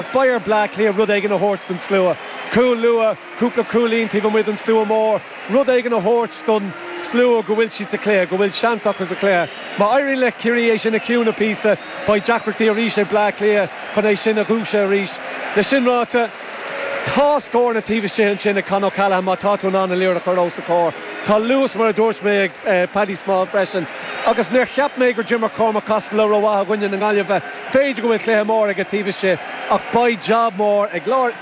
Beidh ar Bleá Cliath rud éigin a thabhairt don slua. Cúl luath, cúpla cúilín taobh amuigh den stua mór, rud éigin a thabhairt don slua go bhfuil siad sa chluiche, go bhfuil seans acu sa chluiche. Má éiríonn le Ciarraí é sin a chiúnadh píosa, beidh deacrachtaí arís ag Bleá Cliath chun é sin a dhúiseadh arís. Le sin ráite, tá scóranna taobh istigh ansin ag Con O'Callaghan má tá tú in ann an liathróid a chur os a chomhair. Tá luas mar a dúirt mé ag Paddy Small freisin agus níor cheap mé gur d'imir Cormac Costello rómhaith i gcoinne na Gaillimhe. B'fhéidir go bhfuil cluiche mór aige taobh istigh ach beidh jab mór ag lár,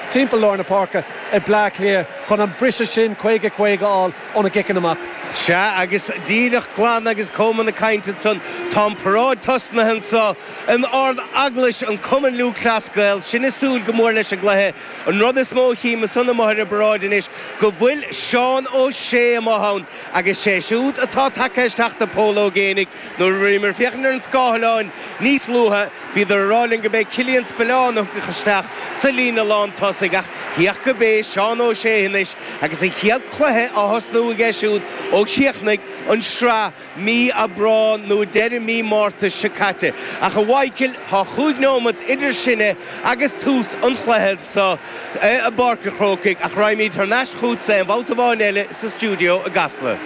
timpeall lár na páirce ag Bleá Cliath chun an briseadh sin caoga, caoga a fháil óna gciceanna amach. Sea agus díreach glan agus Coman ag caint ansan, tá an paráid tosnaithe anso in ardeaglais an Cumann Lúthchleas Gael. Sinn ag súil go mór leis an gcluiche. An rud is mó a chím ansan amuigh ar an bparáid anois go bhfuil Seán Ó Sé amuigh ann agus sé siúd atá tagtha isteach do Pól Ó Géibheannaigh. Nuair a bhíomar ag féachaint ar an scáthlán níos luaithe, bhíodar ag rá linn gurb é Killian Spillane a thiocfadh isteach sa líne lán tosaigh ach thiocfadh gurb é Seán Ó Sé anois agus a chéad cluiche á thosnú aige siúd ó chríochnaigh an sraith mí Aibreán nó deireadh mí Márta seo caite. Ach a Mhaidhcil, tá chúig neomat idir sinne agus tús an chluiche anso i bPáirc a' Chrócaigh ach raghaimíd thar n-ais chútsa aon bhabhta amháin eile sa stiúideo i gCasla.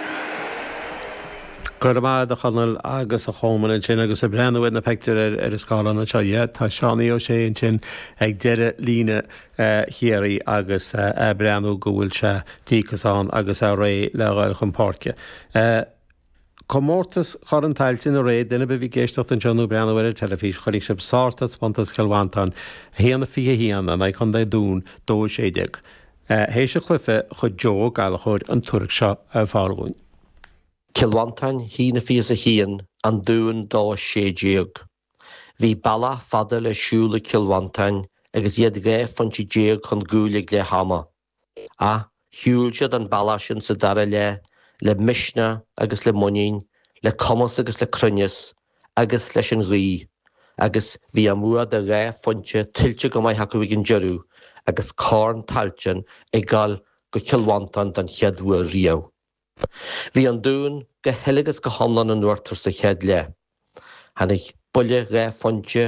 Go raibh maith agat a Chonaill agus a Choman ansin agus ag breathnú ar na peictiúir ar an scáileán anseo, yeah, tá Seánaí Ó Sé ansin ag deireadh líne Chiarraí agus a' breathnú go bhfuil sé díocas ann agus é réidh le ghoil chun páirce. Comórtas Chorn Tailteann aréir duine ar bith a bhí ag éisteacht anseo nó breathnú ar an teilifís chonaic sibh sártaispeántas Chill Mhantáin, 1-21 in aghaidh Chontae an Dúin, 2-16. Théis an chluiche chuir Joe Ó Gallchóir an tuairisc seo ar fáil dhúinn. Cill Mhantáin, 1-21, An Dún, 2-16. Bhí bealach fada le siúl ag Cill Mhantáin agus iad 12 phointe chun gcúil ag leath ama. Ach shiúil siad an bealach sin sa dara leath le misneach agus le muinín, le cumas agus le cruinneas, agus leis an ghaoth, agus bhí a mbua de dhá phointe tuillte go maith acu ag an deireadh agus Corn Tailteann ag dul go Cill Mhantáin don chéad uair riamh. Bhí An Dún go huile agus go hiomlán in uachtar sa chéad leath. Tháinig buille dhá phointe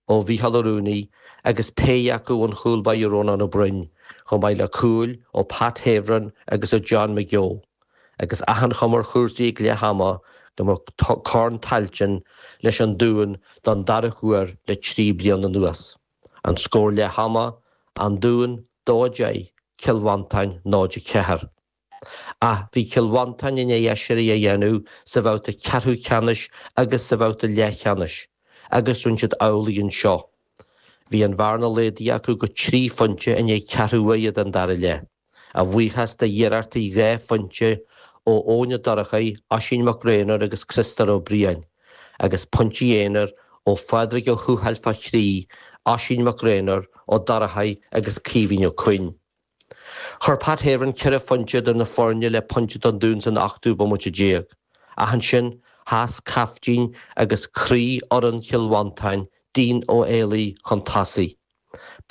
ó Mhícheál Ó Ruanaidh agus péire acu ón chúl báire Rónán Ó Broin, chomh maith le cúil ó Pat Havern agus ó John McGeough, agus achan chuma ar chúrsaí ag leath ama go mbeadh Corn Tailteann leis an Dún don dara huair le trí bliana anuas. An scór leath ama, An Dún 2-10 Cill Mhantáin 0-4. Ach bhí Cill Mhantáin i ndiaidh aiséirí a dhéanamh sa bhabhta ceathrú ceannais agus sa bhabhta leathcheannais agus rinne siad amhlaidh anseo. Bhí an bhearna laghdaithe acu go trí phointe i ndiaidh ceathrú uaire den dara leath, a bhuíochas de iarrachtaí dhá phointe ó Eoin Ó Dorchaidh, Oisín Mac Gréanóir agus Criostóir Ó Briain, agus pointí aonair ó Phádraig Ó Tuathail fá thrí, Oisín Mac Gréanóir, Ó Dorchaidh agus Caoimhín Ó Cuinn. Chuir Pat Havern ceithre phointe idir na foirne le pointe don Dún san ochtú bomaite déag ach ansin sheas caiftín agus croí fhoireann Chill Mhantáin, Dean Ó hÉalaí, chun tosaigh.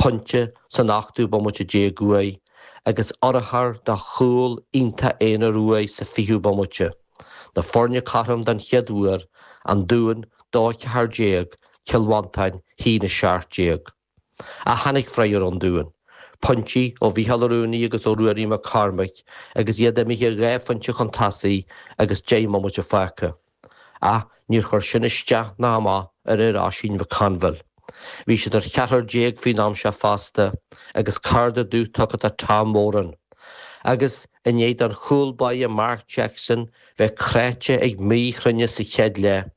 Pointe san ochtú bomaite déag uaidh agus urchar de chúl iontach aonair uaidh sa fichiú bomaite. Na foirne cothrom don chéad uair, An Dún, dó ceathair déag, Cill Mhantáin, a haon a seacht déag. Tháinig freagra ón Dún, pointí ó Mhícheál Ó Ruanaidh agus ó Ruairí Mac Cormaic agus iad imithe dhá phointe chun tosaigh agus deich mbomaite fágtha. Ach níor chuir sin isteach ná amach ar fhir Oisín McConville. Bhí siad ar cheathrar déag faoin am seo fosta agus cárta dubh tugtha do Tom Moran agus, i ndiaidh don chúl báire Mark Jackson bheith cráite ag míchruinneas sa chéad leath,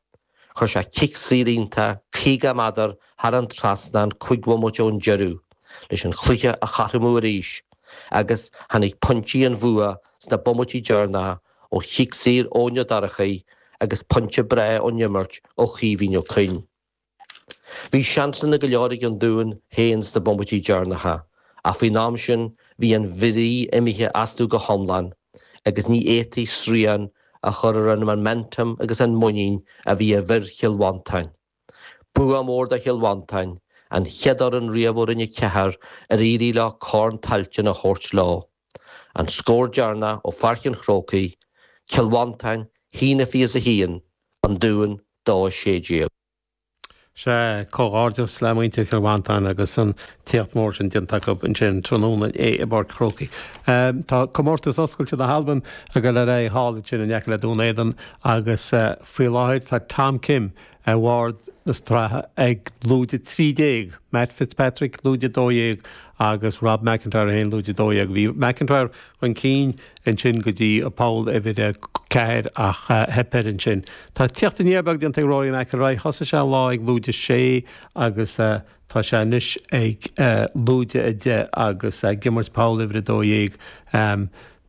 Chuir sé cic saor iontach 50 méadar thar an trasnán cúig bhomaite ón deireadh leis an chluiche a chothromú arís agus tháinig pointí an bhua sna bomaití deireanacha ó chic saor ón Dorchaíoch agus pointe breá ón imirt ó Chaoimhín Ó Cuinn. Bhí seansanna go leor ag an Dún féin sna bomaití deireanacha ach faoin am sin bhí an bhrí imithe astu go hiomlán. agus ní fhéadfaí srian a chur ar an momentum agus an muinín a bhí i bhfir Chill Mhantáin. Bua mór do Chill Mhantáin, an chéad fhoireann riamh ó Roinn 4 ar éirigh leo Corn Tailteann a thabhairt leo. An scór deireanach ó Pháirc an Chrócaigh, Cill Mhantáin, a haon a 21, An Dún, 2 16. Sea, comhghairdeas le muintir Chill Mhantáin agus an t-éacht mór sin déanta acu ansin tráthnóna i bPáirc Chrócaigh. Tá comórtas oscailte na hAlban ag dul ar aghaidh thall ansin in aice le Dún Éideann agus faoi láthair tá Tom Kim ar bharr na sraithe ag lúide 13, Matt Fitzpatrick, lúide 12, agus Rob McIntyre 1, lúide 12. Bhí McIntyre chun cinn ansin go dtí poll uimhir a ceathair ach theip air ansin. Tá teacht aniar beag déanta ag Rory McIlroy. Thosaigh sé an lá ag lúide a sé agus tá sé anois ag lúide a deich agus ag imirt poll uimhir a dó dhéag.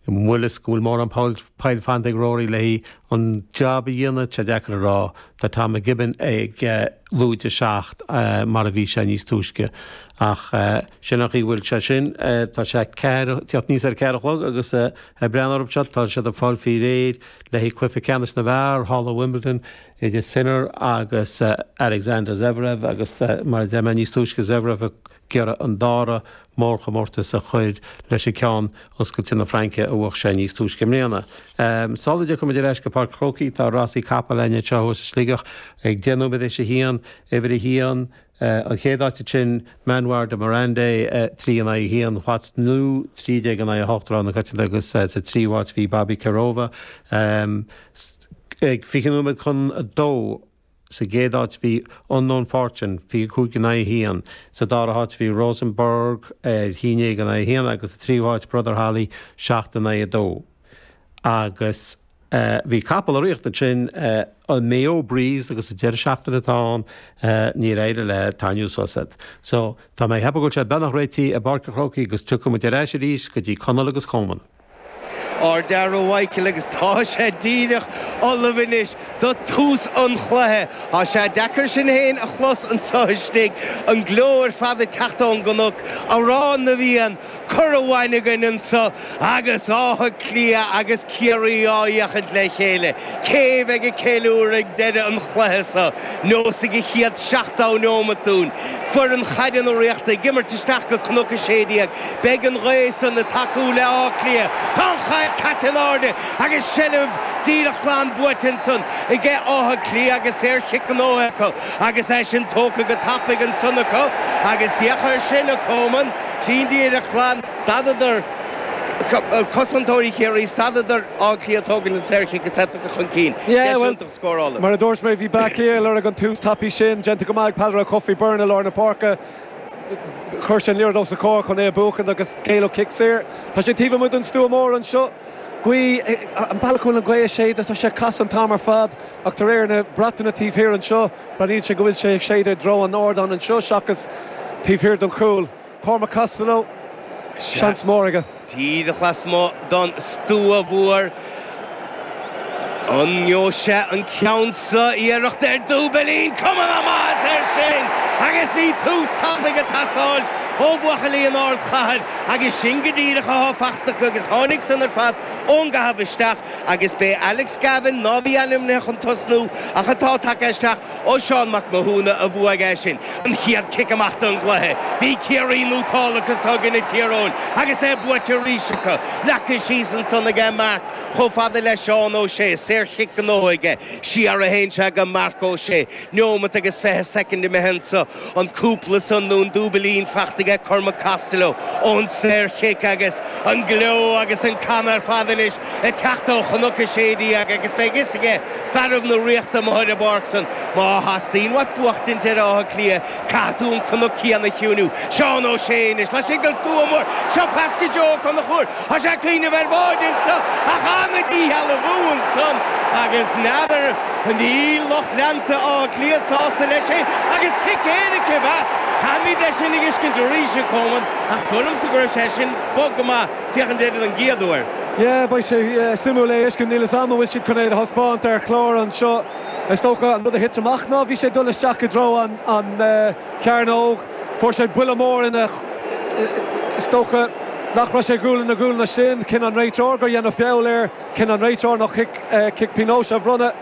B'fhéidir go bhfuil mórán poill fanta ag Rory leis an jab a dhéanamh, tá sé deacair a rá. Tá Tom McKibbin ag. lúide 7 mar a bhí sé níos túisce. Ach sin an chaoi a bhfuil sé sin. Tá sé tíocht aníos ar a ceathair a chlog agus ag breathnú romham anseo tá siad ag fáil faoi réir le haghaidh Cluiche Ceannais na bhFear thall i Wimbledon idir Sinner agus Alexander Zverev agus mar a deir mé níos túisce Zverev ag iarraidh an dara mórchomórtas a chur leis an gceann oscailte na Fraince a bhuach sé níos túisce i mbliana. Sula dtiocfaidh muid ar ais go Páirc an Chrócaigh tá rásaí capall againn anseo thuas i Sligeach ag deich nóiméad tar éis a haon, uimhir a haon, an chéad áit ansin Manoir de Mirande, trí in aghaidh a haon, What's New, trí déag in aghaidh a hocht, rogha na coitianta agus sa tríú áit bhí Bobby Kerova ag fiche nóiméad chun a dó. Sa gcéad áit bhí Unknown Fortune, 25 in aghaidh 1, sa dara háit bhí Rosenborg, 11 in aghaidh 1, agus sa tríú háit Brother Holly, 7 in aghaidh 2. Agus bhí capall ag rith ansin, an Mayo Breeze, agus sa deireadh seachtaine atá ann níor éirigh le Tainniú sos fhad. So, tá mé ag ceapadh go bhfuil sé beagnach réitithe i bPáirc an Chrócaigh agus tiocfaidh muid ar ais arís go dtí Conall agus Coman. Ardfhear a Mhichíl agus tá sé díreach ullamh anois do tús an chluiche. Tá sé deacair sinn féin a chlos anseo istigh, an gleo ar fad ag teacht ón gcnoc, Amhrán na bhFiann curtha uainn againn anseo agus Áth Cliath agus Ciarraí á fhéachaint le chéile. Cé bheidh ag ceiliúradh ag deireadh an chluiche seo? Neosfaidh an chéad seachtó neomat dúinn. Foireann Chaide na Ríochta ag imirt isteach go Cnoc 16. Beidh an ghaoth san ag tacú le Áth Cliath. Tá an chaid caite in airde agus seilbh díreach glan buaite ansan aige Áth Cliath agus saor-chic gnóthaithe acu agus é sin tógtha go tapaidh ansan acu agus féach air sin a Coman, clean díreach glan, stadadar, cosantóirí Chiarraí, stadadar Áth Cliath tógaint an saor-chic is theip acu chun cinn. Deis iontach scórála. Mar a dúirt mé bhí Bleá Cliath ag lorg an tús tapaidh sin. Déanta go maith ag Peadar Ó Cofaigh Byrne i lár na páirce. Chuir sé an liathróid os a comhair chun é a bhuachaint agus géilleadh cic saor. Tá sé taobh amuigh den stua mór anseo. Gaoth, an bealach a bhfuil an ghaoth ag séideadh, tá sé ag casadh an t-am ar fad ach de réir na bratacha taobh thiar anseo, breathnaíonn sé go bhfuil sé ag séideadh i dtreo an ardáin anseo seachas taobh thiar den chúl. Cormac Costello, seans mór aige. Díreach lasmuigh don stua mhór an ngeobhaidh sé an ceann sa, iarracht ar dúbailín, cuma na maitheasa air sin agus bhí tús tapaidh ag teastáilt ó bhuachaillí an Ardchathair agus sin go díreach athá fachta acu agus tháinig san ar fad ón gcaitheamh isteach agus b'é Alex Gavin ná bhí ainmnithe chun tosnú ach atá tagtha isteach Ó Seán Mac Mathúna a bhuaigh é sin, an chéad cic amach don gcluiche. Bhí Ciarraí nótáltha as súd i gcoinne Thír Eoghain agus é buaite arís acu. Leagtha síos ansan aige é marc chomh fada le Seán Ó Sé. Saor chic gnóite aige. CR1 Sea aige Marc Ó Sé. Neomat agus fiche soicind imithe anso. An cúpla san nó an dúbailín faighte aige Cormac Costello ón saor-chic agus an gleo agus an canadh ar fad anois ag teacht ó Chnoc 16 agus beidh fhios aige fearaibh na Ríochta amuigh ar an bpáirc san má theastaíonn uait buachtaint ar Áth Cliath caithfidh tú an cnoc céanna a chiúiniú. Seán Ó Sé anois laistigh den stua mór. Seo pas go Joe Ó Conchúir. Thá sé ag cuimhneamh ar bháid annso ach thána dícheall a bhfú annsan agus n'fheadar ach níl lucht leanta Átha Cliath sásta leis sin agus cic éirice ab ea Caithfimíd é sin a fhiscint arís a Coman ach súil liomsa go raibh sé sin bog go maith féachaint air don gcéad uair. Yeah, beidh sé suimiúil é a fheiscint. Níl 'fhios a'm an bhfuil siad chun é do thaispeáint ar chlár anseo. Is dócha an rud a thit amach ná bhí sé ag dul isteach i dtreo an, chearnóg. Fuair sé buille mór in a. Is dócha nach raibh sé gualainn le gualainn leis sin. Chinn an réiteoir gur dhéanadh feall air. Chinn an réiteoir ná chic, cic pionóis a bhronnadh.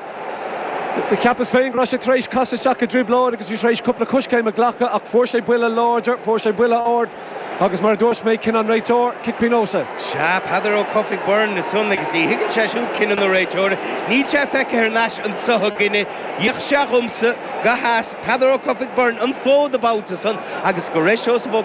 Cheapas féin go raibh sé tar éis casadh isteach i dtrioblóid agus bhí tar éis cúpla coiscéim a ghlacadh ach fuair sé buille láidir, fuair sé buille ard. Agus mar a dúirt mé, cinneadh an réiteora, cic pionóis. Sea, Peadar Ó Cofaigh Byrne ansan agus ní thuigeann sé siúd cinneadh an réiteora. Níl sé feicthe thar n-ais annso againne. D'fhéach sé dhomsa, gur sheas Peadar Ó Cofaigh Byrne an fód an babhta san agus go raibh Seosamh Ó.